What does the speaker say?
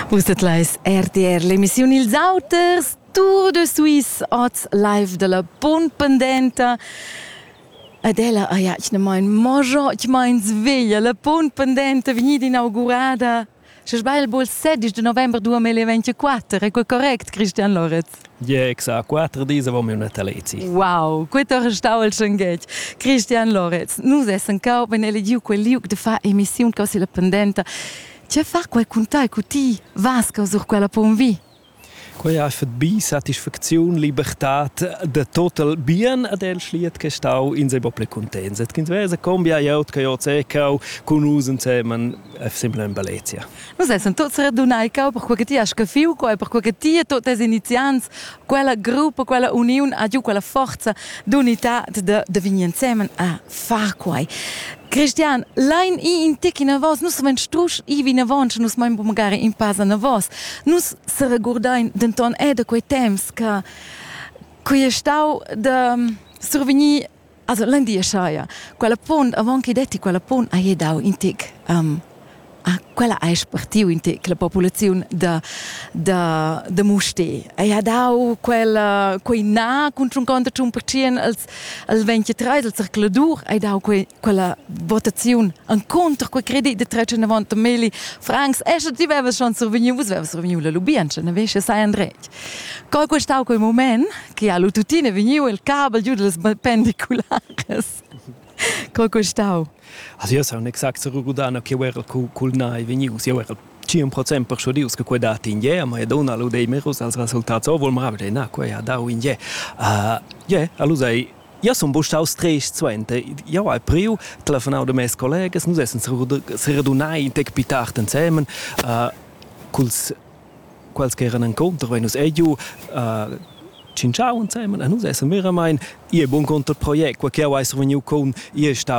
Vus dat leis RTR, l'emissiun Ils Auters, Tour de Suisse, oz live dalla Bun Pendenta. Ed ella ei atgnamain mojo, atgnamain sveglia, la Bun Pendenta vegnida inaugurada. Sche sbagl, bol 16 de november 2024, è quel correct, Christian Loretz? Gexa quattro dis avon miu natalezi. Wow, quei ha restau il schenghetg. Christian Loretz, nus essen cau ben elegiu quel liug de far emissiun causi la pendenta. Tge far quai cun tai, cu ti vas sur quella ponvi? Quei ei fat bi satisfacziun, libertad de total bien ad el schliet che stau in se bo ple contents. Et kind vese combia jot che jot se cau cun us ensemen e sembla in Balezia. Nus essan tuts radunai cau per quella ti ha scaffiu quei, per quella ti e tuts tes iniziants, quella gruppa, quella uniun ha giu quella forza d'unitad de, de vegnir ensemen a far quei. Cristian, lein i in tec enavos, nus samein strusch i vinavon, sche nus mein magari in pass enavos. Nus seregurdein denton era da quei temps che quei è stau de survegnir Also l'endia saja quella punt avant che detti quella punt haja dau in tic um, ah, quella ha spartiu in tic la populaziun da da da Musté haja dau quella quei na cun tschunconta tschun percent als als 23 als circuladur hai dau quei quella votaziun an conter quei credit de 390 mili francs e sche ti veves schon survegniu vus veves survegniu la lubientscha ne vesche sai André Co è questau quei moment che ha lu tuttina vegniu il cabel giu dallas pendiculares? Co è questau? Also io sono exact se rugudana che eu era cul nai vegnius, eu era 100% persuadius che quei dat in je, ma e dona lu dei merus als resultats, oh, vol mravigl, na, quei ha dau in je. Uh, je, allo sei, Io sono stato tres suente. Io ho priu, telefonau da mes collegas, nus essen se redunai in tec pitar insemen, uh, culs quels che eran encounter vein nus ei giu uh, tschintschau ensemen e nus essan veramein ihr bun conter project quei che ei survegniu con ihr stau